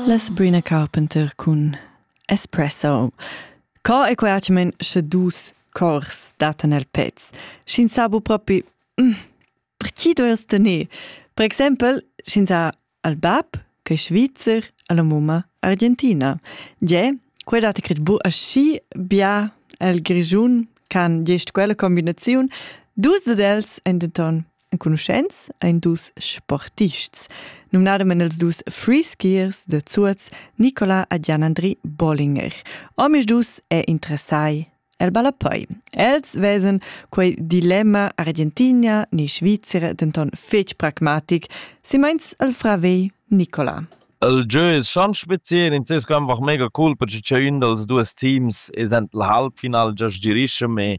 Las Brina Carpenter cun Espresso. Co è quai men sche dus cors datan el pez? Sch'ins sa bu propi, mm, per chi dois tener? Per exempel, sch'ins ha al bab, che è Svizzer, alla mumma argentina. Ge, quei dat cret bu aschi bia el Grischun can gest quella combinaziun. Dus d'els en denton Enconuschents ein dus sportists, numnademen els dus freeskiers da Zuoz, Nicola e Gian-Andri Bollinger. Omis dus è interessai el ballapoi. Els vesen quei dilemma Argentina ni Svizzera denton fetg pragmatic, si meins el frave Nicola. Il jeu ist schon speziell, in Cisco einfach mega cool, perché c'è un dels duas teams ist en el Halbfinal già girischem e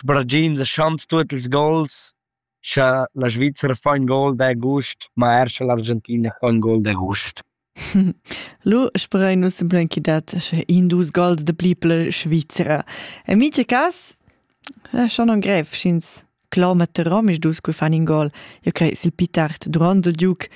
Sbragind seschand tuot ils gols scha la Svizra fa ün gol d'agust, ma er scha l'Argentina fa ün gol d'agust. Lu sperein nus simplamein chi dat sche in dus gols da pli per la Svizra. En mica cas è schon non grev, sch'ins cloma Rom ils dus che fan in gol. Io crei sil pli tard durant il giug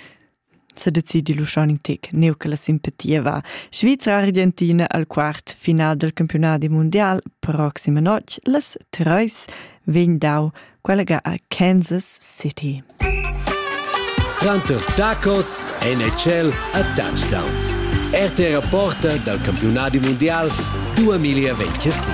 sedecidi l'uschani tec, neu che la simpatia va. Svizra Argentina al quart final del campionati mondial, proxima notg, las treis, vegn dau quella a Kansas City. Tanto tacos, NHL a touchdowns. RT Reporter dal campionati mondial 2026.